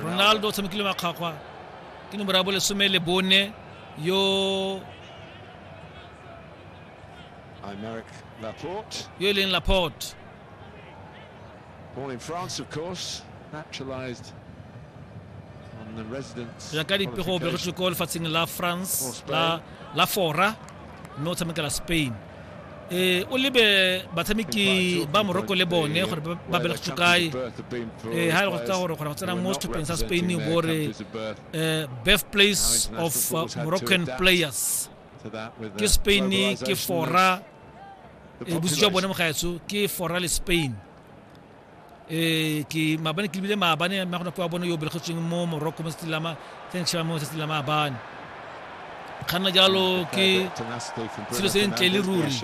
ronaldo o tshamekile makgwakgwa ke nomoro ya bolesome le bone yo yo e leng laporte Born in France, of course, naturalized on the residence. ya ka dipego o begetšwe ko lefatsheng la france la la fora mme o tshamekela spain eh o lebe batshameki ba moroko le bone gore ba bele go kae eh ha go tsa gore go tsena mo setlhopheng sa Spain bo re eh birthplace of uh, Moroccan players ke Spain ke fora e eh, boswa bone mogaetso ke fora le Spain Eh, ke maabane ke lebile maabane mme go na kwa bone yo belegetsweng mo morocco mo setilama thanks shama mo setilama maabane kganna jalo ke selo se ntle le ruri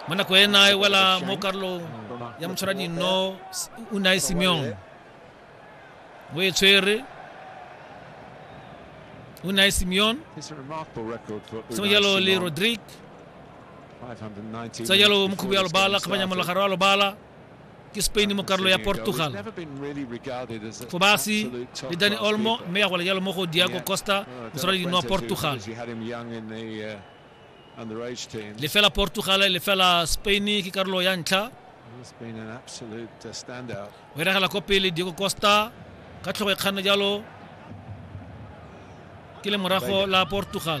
mo nako ena e wela mo karolong ya motshwara dino o ne a e simeon mo e tshwere o ne a e simeon sengwe jalo le rodrigue tsa jalo mokhubo ya lobala kgabanya molagare wa lobala ke spain mo karolo ya portugal go basi le dani olmo mme ya gola jalo mo go diago costa moswara dino wa portugal lefela portugal lefela spain ke karolo ya ntlha o iragela ko pele diego costa ka tlhogo e kganne jalo ke le morago la portugal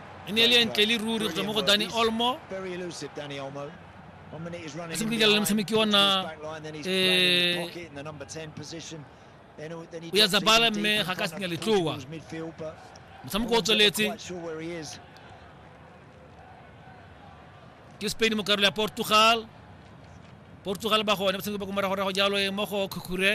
e ne e le e ntle le ruri go tswa mo go dani olmo a se bokelela le motshameki ona o ya zabala mme ga ka senya letloa motshameko o tsweletse ke spain mo karolo ya portugal portugal ba gone ba tshameko ba ko moragorago jalo e mo go khukhure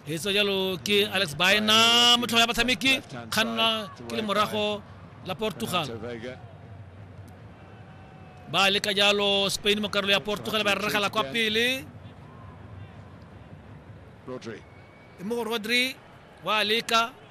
e tsa jalo ke alex baena motlhogo ya batshameki kganna ke le morago la portugal ba leka jalo spain mo karolo ya portugal ba rregela kwa pele e mo rodri wa leka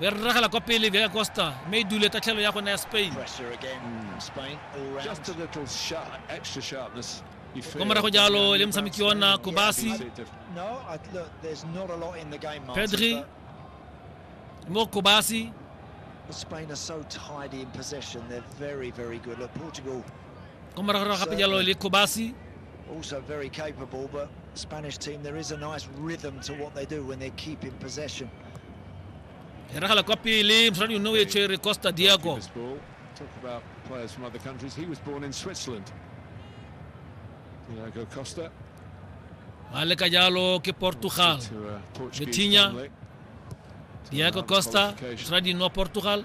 Be re ragela kwa pele Vega Costa mme e dule tatlhelo ya gone ya Spain. Kwa morago jalo le motshameki ona Kobasi. Pedri mo Kobasi. Spain are so tidy in possession. They're very, very good. Look, Portugal. Kwa morago gape jalo le Kobasi. Also very capable, but Spanish team, there is a nice rhythm to what they do when they keep in possession. Eragala kwa pele, mosadi yone o e tshwere Costa Diago. Talk about players from other countries. He was born in Switzerland. Diago Costa. A leka jalo ke Portugal. Vitinha. Diago Costa, mosadi no Portugal.